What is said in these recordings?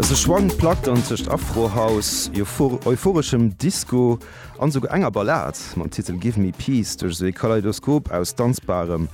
Sou schwankt Plack dann tëscht Afrohouse, euphoreschem Disco an esouguer enger Ballad mam Titel Give Me Peace duerch esou ee Kaleidoskop aus Danzbarem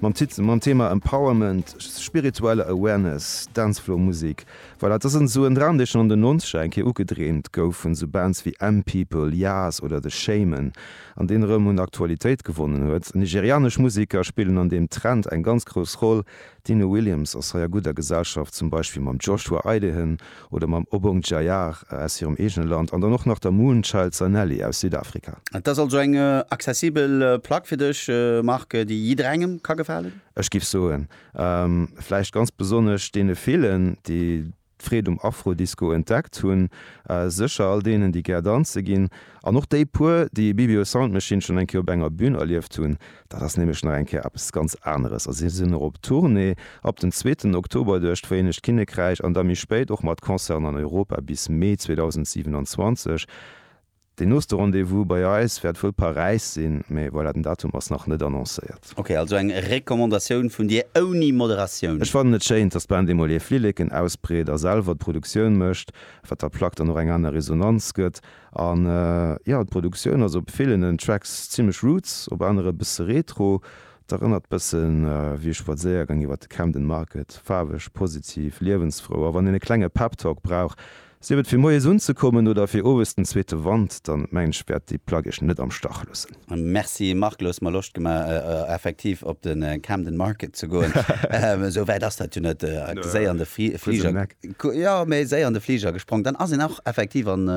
mam Thema Empowerment, spiritueller Awareness, Dancefloormusik. Voilà, et ass esou en Dram, dee schonn an den Nonzeger eng Kéier ugedreemt gouf vun esou Bands wéi M-People, Yaz oder The Shamen an deen erëm un Aktualitéit gewonnen huet. Nigerianesch Museker spillen an deem Trend eng ganz grouss Roll, D'Dino Williams ass hei a gudder Gesellschaft, zum Beispill mam Joshua Idehen oder mam Obong Jayar aus hirem eegene Land an dann och nach der Moonchild Zanelli aus Südafrika. Et ass also eng accessibel Plack fir dech, Marc, déi jidderengem ka gefalen? Ech giff soen, vläicht ganz besonnesch deene villen, déi d'Freed um Afro-Disco entdeckt hunn, sécher all deenen, déi gär danze ginn, an och déi puer, déi Bibio Sound Machine schonn eng Kéier op enger Bün erlieft hunn. Dat ass nämlech nach eng Kéier eppes ganz aneres a si sinn och op Tournée ab dem zweeten Oktober duerch d'Vereenegt Kinnekräich an da méi spéit och mat Concerten an Europa bis Mee 2027. Deen nooste Rendez-vous bei eis wäert wuel Paräis sinn, mee voilà, den Datum ass nach net annoncéiert. Ok, also eng Recommandatioun vun dir ouni Moderatioun. Ech fannen et schéin, dass d'Band eemol hir Flilleken ausbreet a selwer d'Produktioun mécht, wat der Plack dann och eng aner Resonanz gëtt. An jo, d'Produktioun ass op villen Tracks zimmlech roots, op anere e bësse retro. Et erënnert bëssen wéi e Spadséiergang iwwert de Camden Market, faarweg, positiv, liewensfrou a wann een e klenge Pep Talk brauch, Sief et fir moies unzekommen oder fir owes den zweete Wand, dann mengen ech wäert déi Plagg net am Stach loossen. Merci Marc, du hues mer Loscht gemaach effektiv op den Camden Market ze goen. Esou wäit ass dat jo net, séier an de Fliger, jo mee séier an de Fliger gesprongen, dann ass een och effektiv an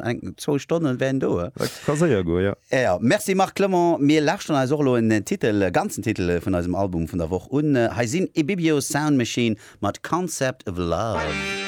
eng zwou Stonnen wär een do. Dat ka séier goen, jo. Jo, merci Marc Clement. Mir lauschteren eis och elo en Titel, e ganzen Titel vun eisem Album vun der Woch un. Hei sinn Ibibio Sound Machine mat Concept of Love.